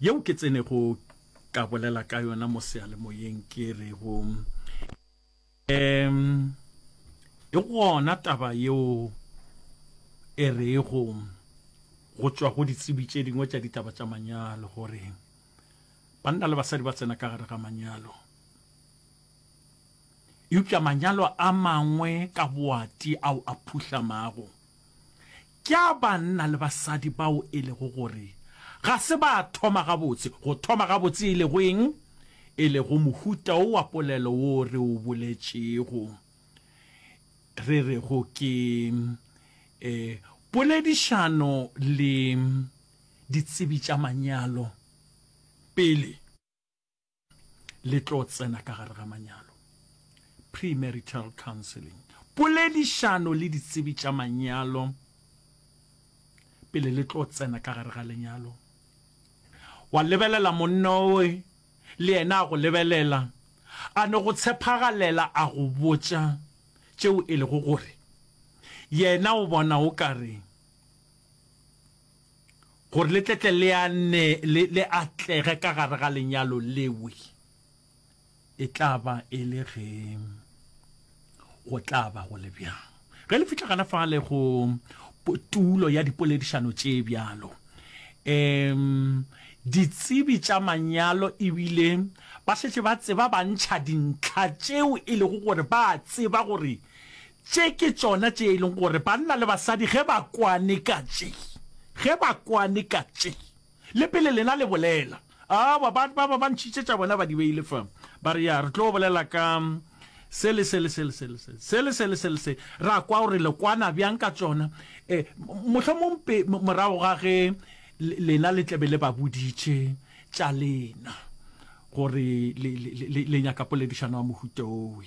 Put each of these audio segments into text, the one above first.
Yeo ke tsenego ka bolela ka yona mo seyalemoyeng ke re go um e gona taba yeo e rego go tšwa go ditsebi tše dingwe tša ditaba tša manyalo gore banna le basadi ba tsena ka gare ga manyalo eupša manyalo a mangwe ka boati ao a phuhlamago Ke a banna le basadi bao e lego gore ga se ba thoma gabotse. Go thoma gabotse e lego eng? E lego mohuta wo wa polelo wo re o boletšego, re rego ke e, poledišano le ditsebi tša manyalo pele. le tlo tsena ka gare ga manyalo premarital counseling poledišano le ditsebi tša manyalo pele le tlo tsena ka gare ga lenyalo wa lebelela monna oe le yena a go lebelela a no go tshepagalela a go botša tšeo e lego gore yena o bona o ka reng gore le tletle le ane le, le atlege ka gare ga lenyalo lewe, e tla ba e le ge go tla ba go le bjang. Ge le fihla gana fale go tulo ya dipoledišano tše bjalo, um ditsebi tša manyalo ebile ba šetše ba tseba ba ntšha dintlha tšeo e lego gore ba a tseba gore Tše ke tšona tše e leng gore banna le basadi ge ba kwane ka tše, ge ba kwane ka tše, le pele lena le bolela, aowa, ba, ba, ba, ba ntšhitše tša bona ba di beile fa, ba re, Ya, re tlo bolela ka se le se le se le se le se, se le se le se le se, ra kwa gore le kwana bjang ka tšona. E, mohlomong pe, morago ga ge lena le tla be le ba boditše tša lena, gore le, le, le, le nyaka poledišano ya mohuta wowe.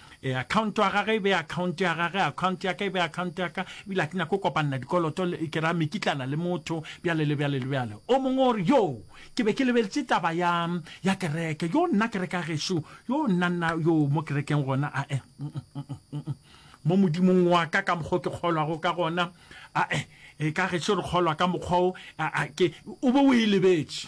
E, account ya gage e be account ya gage, account ya ka e be account ya ka, ebile a ke nyake go kopanela dikoloto le ke ra mekitlana le motho bjale le bjale le bjale. O mongwe o re, Yo, ke be ke lebeletše taba ya, ya kereke. Yo, nna kereke ya gešo, yo, nna, nna, yo, mo kerekeng gona, ae, mo Modimong wa ka, ka mokgwa o ke kgolwago ka gona, ae, e, ka gešo re kgolwa ka mokgwa o, a, a, ke, o be o e lebetše.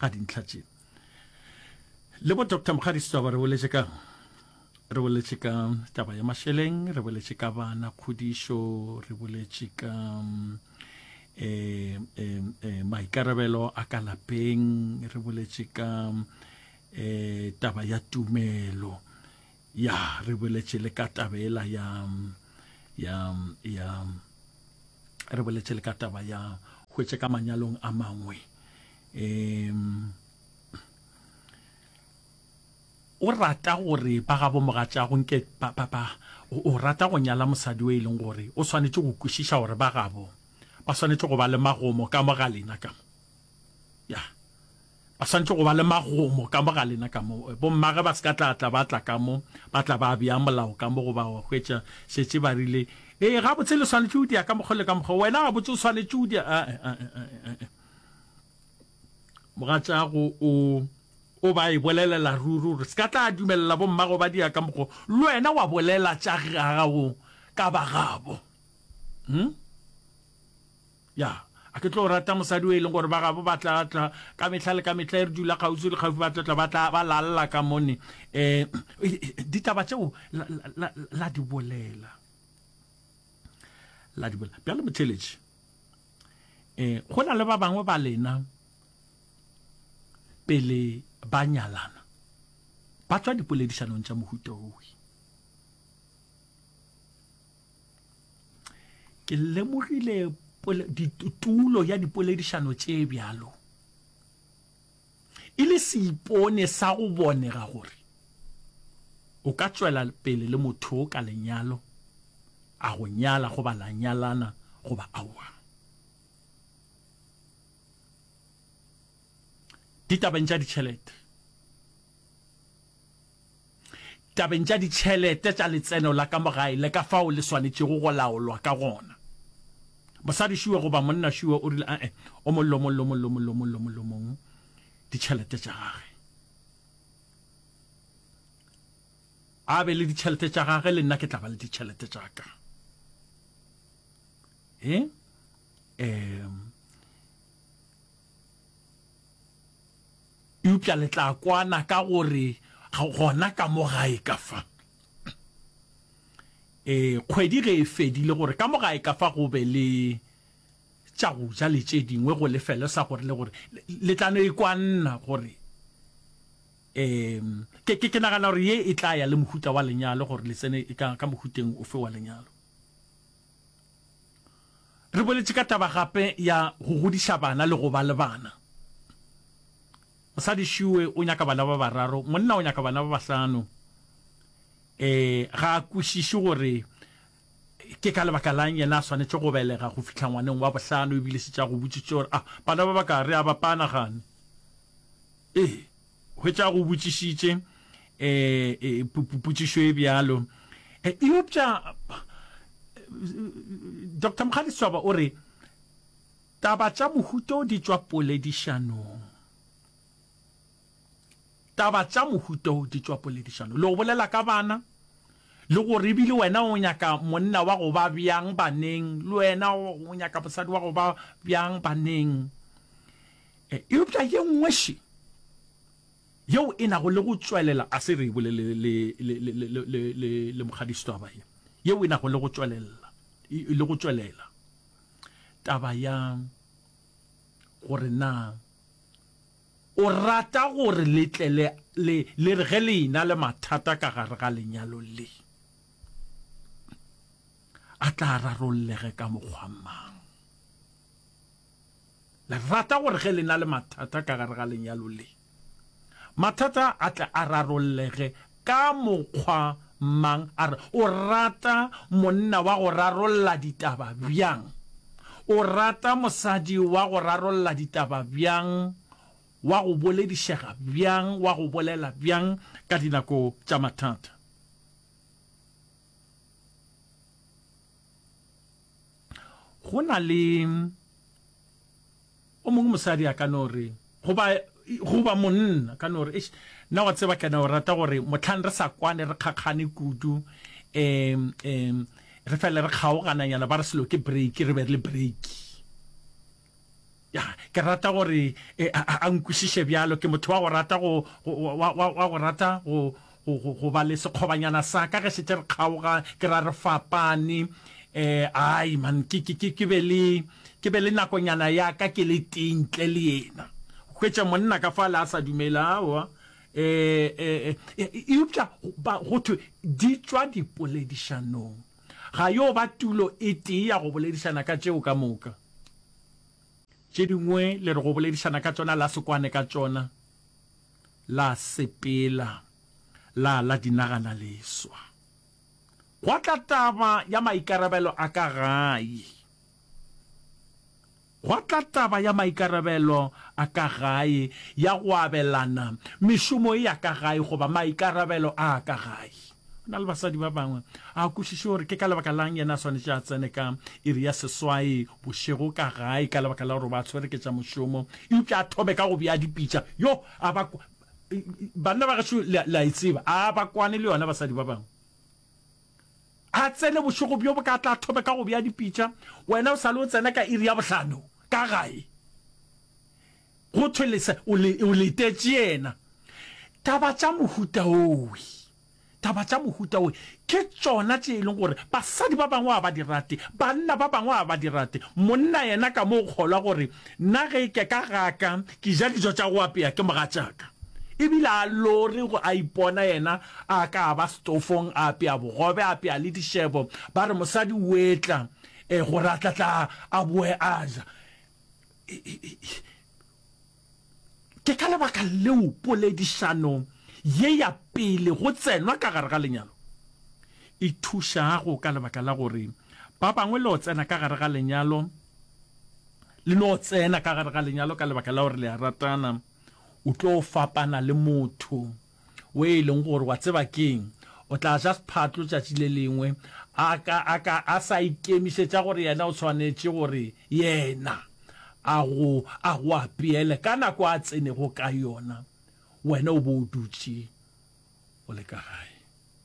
ga dintlha tše le bo dr mokgadi setšaba re boletše ka re boletše ka taba ya mašeleng re boletše ka bana kgodišo re boletše ka um maikarabelo a ka lapeng re boletše ka um taba ya tumelo ya re boletše le ka tabela ya ya ya re boletše le ka taba ya hwetše ka manyalong a mangwe um o rata gore ba gabo mogatšago nke o rata go nyala mosadi o e leng gore o swanetše go kwešiša gore ba gabo ba swanetše go ba le magomo ka mo ga lena ka mo ya ba santse go ba le magomo ka mo ga lena ka mo eh, bommage ba se ka tla tla ba tla ka mo ba tla ba bea molao ka mo go ba wa hwetša šetse ba rile ee ga botse le swanetse o dia ka mokgwa le ka mokgwa wena ga botse o swanetse o dia ah, eh, ah, eh, mogatšago o o ba e bolelela ruri gore se ka tla dumelela bommago ba dia ka mokgwa le wena wa bolela tša gago ka bagabo hmm? Ya, a ke tlo rata mosadi o e leng gore ba gabo ba tla tla ka mehla le ka mehla e re dula kgauswi le kgauswi ba tla tla ba tla ba lalla ka mone um ditaba tšeo la, la, la, la di bolela la di bolela bjale motheletši um go na le ba bangwe ba lena pele ba nyalana ba tswa dipoledišanong tša mohuta owe ke lemogile tulo ya dipoledišano tše bjalo e le seipone sa go bonega gore o ka tšwela pele le motho ka lenyalo a go nyala goba la nyalana goba aowa ditabeng tša ditšhelete tabeng tša ditšhelete tša letseno la ka mo gae le ka fao le swanetšego go laolwa ka gona. Mosadišuwe goba monnašuwe o rile, A-e, o mo lomo, lomo, lomo, lomo, lomo, lomong ditšhelete tša gage. A be le ditšhelete tša gage, le nna ke tla ba le ditšhelete tša ka. E? Um, Eupša le tla kwana ka gore gona ka mo gae ka fa, ee, kgwedi ge e fedile, gore ka mo gae ka fa go be le tša go ja le tše dingwe go lefelo sa gore le gore le tla no e kwanna gore, ee, ke, ke nagana gore ye e tla ya le mohuta wa lenyalo gore le tsene ka, ka mohuteng ofe wa lenyalo. Re boletše ka taba gape ya go godiša bana le go ba le bana. Mosadi Shue o nyaka bana ba bararo, monna o nyaka bana ba bahlano. Ee, ga a kwešiše gore ke ka lebaka la'ng yena a swanetše go belega go fihla ngwaneng wa bohlano ebile šetše a go botšitše gore, A bana ba baka re a ba pana gane? Ee. Hwetša go botšišitše potšišo e bjalo. Eupša Doctor Mokgadi-Setshwaba o re, Taba tša mohuta o di tšwa poledišanong. Taba tša mohuta o di tšwa poledišanong. Le go bolela ka bana, le gore ebile wena o nyaka monna wa go ba bjang baneng, le wena o nyaka mosadi wa go ba bjang baneng. E, eupša ye nngweši yeo e nago le go tšwelela a se re e bolele le mokgadiso taba ye yeo e nago le go tšwelela le go tšwelela taba ya gore na o rata gore letle le le re ge le ena le mathata ka gare ga lenyalo le a tla rarollege ka mokgwa mang Le rata gore ge le na le mathata ka gare ga lenyalo le, mathata a tle a rarollege ka mokgwa mang? A re, O rata monna wa go rarolla ditaba bjang? O rata mosadi wa go rarolla ditaba bjang, wa go boledišega bjang, wa go bolela bjang ka dinako tša mathata? go na le o mongwe mosadi a ka no re goba goba monna ka no re eish nna wa tseba kana o rata gore motlhang re sa kwane re kgakgane kudu um um re fele re kgaogananyana ba re selo ke break re be re le break Ya, ke rata gore e, a, a nkwešiše bjalo. Ke motho wa go rata go, go wa, wa, wa go rata go, go, go, go ba le sekgobanyana sa ka ge šetše re kgaoga, ke ra re fapane. Eh, ai man, ke, ke, ke, ke be le, ke be le nakonyana ya ka ke le tee ntle le yena. Hwetša monna ka fale a sa dumela, aowa. Eh, eh, eh, eupša ba, go thwe di tšwa dipoledišanong. Ga yo ba tulo e tee ya go boledišana ka tšeo ka moka. Tše dingwe le re go boledišana ka tšona la se kwane ka tšona, la sepela, la la di nagana leswa. Gwa tla taba ya maikarabelo a ka gae. Gwa tla taba ya maikarabelo a ka gae, ya go abelana mešomo ya ka gae goba maikarabelo a ka gae. Go na le basadi ba bangwe a kwešiše gore ke ka lebaka la'ng yena a swanetše a tsene ka iri ya seswai bošego ka gae ka lebaka la gore ba tshwere ke tša mošomo eupša a thome ka go bea dipitša. Yo a ba Banna ba gešo le a e tseba, a ba kwane le yona basadi ba bangwe. A tsene bošego bjo boka, a tla thome ka go bea dipitša. Wena o sa le o tsena ka iri ya bohlano ka gae, go thwe lesa o le, o letetše yena. Taba tša mohuta owe, taba tša mohuta owe ke tšona tše e leng gore basadi ba bangwe ga ba di rate, banna ba bangwe ga ba di rate. Monna yena ka mo o kgolwa gore nna ge ke ka gaka ke ja dijo tša go apea ke mogatšaka, e bile a lore go a ipona yena A ka a ba setofong, a apea bogobe, a apea le dišebo. Ba re, Mosadi o etla e, gore a tla tla a boe a ja. Ke ka lebaka leo poledišano ye ya pele go tsenwa ka gare ga lenyalo e thušago, ka lebaka la gore ba bangwe le o tsena ka gare ga lenyalo, le no tsena ka gare ga lenyalo ka lebaka la gore le a ratana, o tlo fapana le motho. we e leng gore wa tseba keng o tla ja sphatlo tšatši le lengwe a ka a ka a sa ikemišetša gore yena o tshwanetše gore yena a go a go apeele ka nako a tsenego ka yona wena o bo o dutše o le ka gae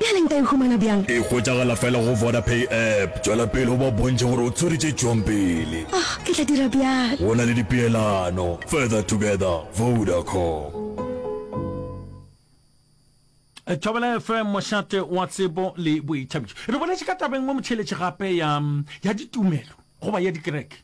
Bjale nka e humana bjang? E hwetšagala fela go Vodapay app. Tšwela pele o ba bontšhe gore o tshwere tše tšwang pele. Oh, ke tla dira bjalo. Go na le dipeelano. Further together, Vodacom. Thobela FM, mošate wa tsebo le boithabišo. Re boletše ka taba e nngwe motšheletše gape ya, ya ditumelo goba ya dikereke.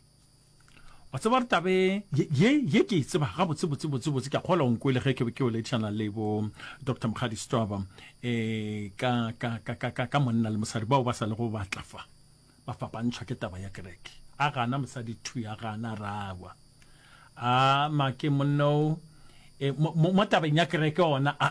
wa tseba re tabe ye ye ke e tseba ga botse botse botse botse ke kgola onko le ge ke ke o letšana le bo dr mogadi stoba eh ka ka ka ka ka ka monna le mosadi bao ba sa le go batla fa ba fapantšhwa ke taba ya kereke a gana mosadi thu ya gana rawa a make monno eh, mo tabeng ya kereke ona a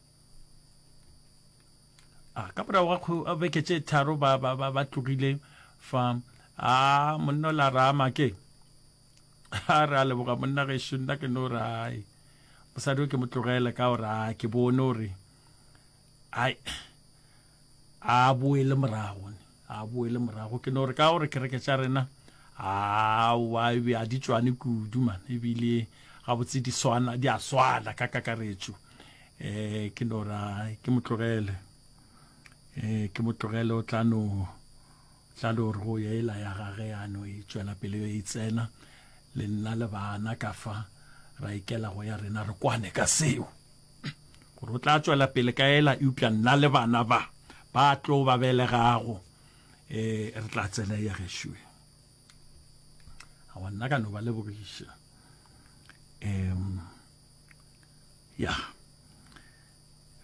a ah, ka morago ga ah, beke tše tharo ba, ba, ba, ba tlogile fa a ah, monna o la rama ke a re a leboga monna gešo nna ke no rai mosadi o ke mo tlogele ka gore a ke bone gore ai a boele morago ne a boele morago ke no re ka gore kereke tša rena a wa e be a di tswane kudu man ebile ga botse di swana di a swana ka kakaretso eh ke no ra ke motlogele eh ke motlogele o tla no tla no re go yela ya gage ya no e tswela pele e itsena le nna le bana ka fa ra ikela go ya rena re kwane ka seo gore o tla tšwela pele ka ela eupša nna le bana ba ba tlo ba belegago um re tla tsena ya gešoe awa nna ka no ba lebogiša um ya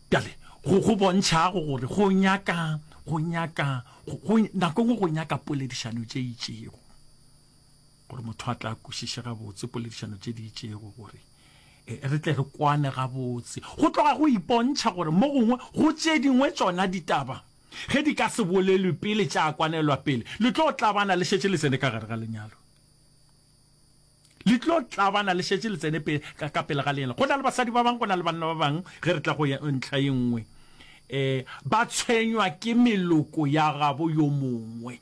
bjale go bontšhago gore go nyaka go nyaka nako nngwe go nyaka poledišano tše itšego gore motho a tla kwešiše gabotse poledišano tše di itšego gore e, re tle re kwane gabotse go tloga go ipontšha gore mo gongwe go tše dingwe tšona ditaba ge di ka se bolelwe pele tša kwanelwa pele le tlo tlabana le šetše le tsene ka gare ga lenyalo le tlo tlabana le šetše le tsene ka pele ga lenyalo go na le basadi ba bangwe go na le banna ba bangwe ge re tla go ntlha ye nngwe um ba tshwenywa ke meloko ya gabo yo mongwe